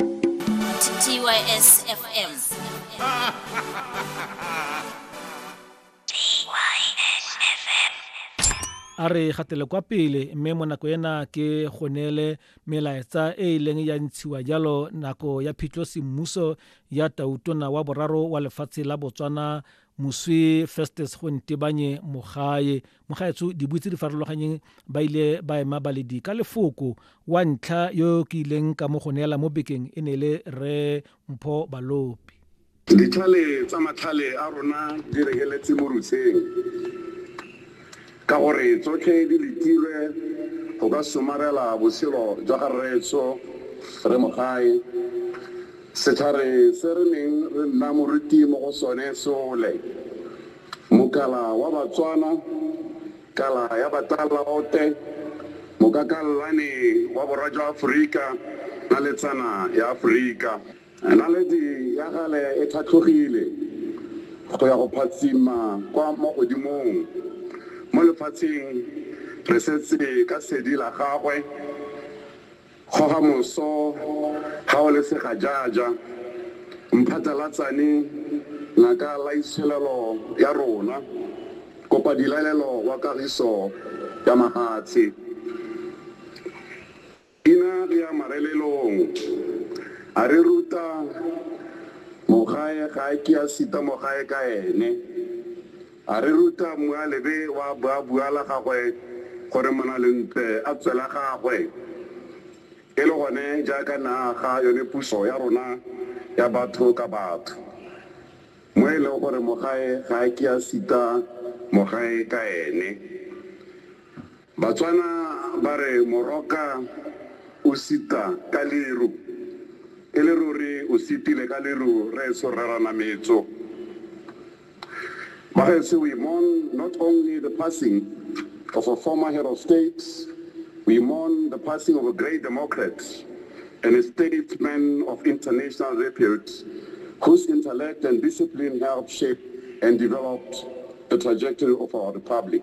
TYS FM. a re gatele kwa pele mme mo nako ena ke go neele melaetsa e e leng ya ntshiwa jalo nako ya phitlho semmuso ya tautona wa boraro wa lefatshe la botswana moswi festus gontebanye mogae mogaetsho dibui tse di farologanyeng ba ile ba ema baledi ka lefoko wa ntlha yo ke ileng ka mo go neela mo bekeng e ne e le re mpho balopi ditlhale tsa matlhale a rona di rekeletse mo rutsheng ka gore tsotlhe di letilwe go ka somarela botshelo jwa ga rreetso re mogae setlhare se re neng re nna moruti mo go sone sole Mokala wa Batswana, Kala ya Batalaote, Mokakallane wa Borwa jwa Aforika, Naletsana ya Aforika. Naledi ya gale e tlhatlhogile go ya go phatsima kwa mo godimong. Mo lefatsheng re setse ka sedi la gagwe. Goga moso ga o le segajaja, mphatlalatsane ngaka laitsholelo ya rona, kopa dilaelelo wa kagiso ya mahatshe. Ina re ya marelelong, a re ruta mogae ga a ke a sita mogae ka ene. A re ruta Mmualebe wa boabua la gagwe gore Monalentle a tswe la gagwe. E le gone jaaka ne a aga yone puso ya rona ya batho ka batho, mo e leng gore mogae ga a ke a sita mogae ka ene. Batswana ba re moroka o sita ka leru. E le ruri o sitile ka leru rraetsho Rre Ranametso. Bagaetsho we mourn not only the passing of a former head of state, we mourn the passing of a great democrat and a statesman of international repute whose intellect and discipline helped shape and developed the trajectory of our republic.